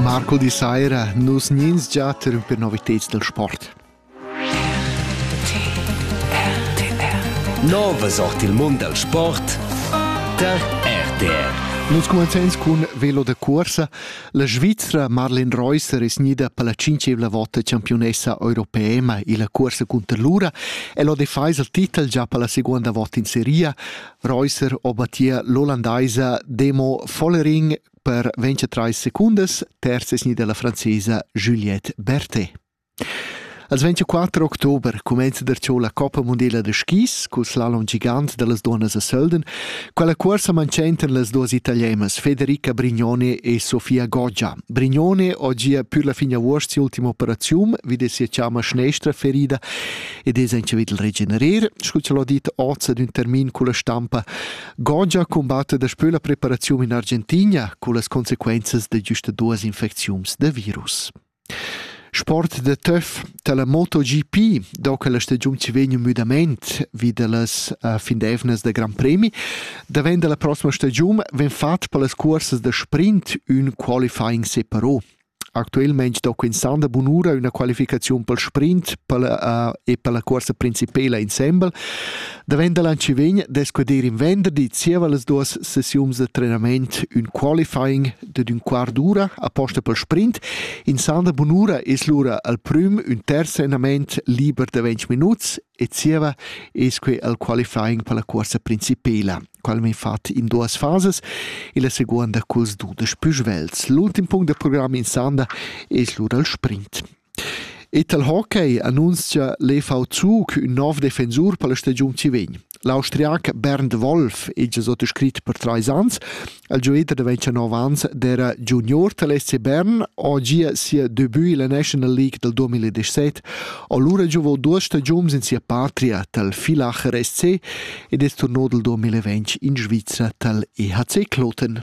Marco di saira, nus gnins già interrumper novitads dal sport. Nova sort il mund dal sport tar RTR. Nus cumenzens cun velo da cursa. La Svizra Marlene Reusser es gnida per la cinquevla vota campiunessa europeema illa cursa cunter l'ura e l'ho defais il titel già per la seguonda vota in seria. Reusser obattia l'ollandaisa Demo Vollering per 23 secundas, terzesni della francesa Juliette Berthet. Als 24 october comenza der ciò la Coppa Mondiala de skis col slalom gigant dellas donnas a Sölden, quella cuorsa mancentan las duas italiemas Federica Brignone e Sofia Goggia. Brignone oggi ha pur la fine avuost ultima operazione, wie de sia ciama schnestra ferida ed es aint il regenerer, scu c'l ho dit oz ün termin culla stampa, gongia cumbatter daspö la preparaziun in Argentina cullas conseguenzas da güsta duas infecziuns da virus. Sport de töf dalla MotoGP, do che la stagiun ci vegn müdament vi dallas uh, findevnas da Gran Premi, da ven dalla prossima stagiun ven fat per las cuorsas da sprint ün qualifying separò. Actualmein stocca ins da bunura üna qualificaziun pel sprint pella e pella cuorsa principela insembel. Davent da l'an chi vegn dess que dir in venderdi zieva las duos sessiuns da trenament ün qualifying dad ün quart d'ura aposta pel sprint. In san da bunura es lura al prüm ün terz andament liber da ventg minuts E zieva es quai il qualifying per la cuorsa principela, qual m'ha fat in duas fasas e la seguonda culs dudesch pü svels. L'ultim punct da program in sanda es lura il sprint. Ital Hockey annunzia l'EVQ che ün nov defensur per la stagiun ci vegn. L'austriac Bernd Wolf è già sotto scrit per trais ans Il gioiter da 29 ans d'era junior tal SC Bern ho gia sia debut illa National League dal 2017. Allura giovò duos stagiuns in sia patria tal Filacher SC ed es turno dal 2020 in Svizra tal EHC Kloten.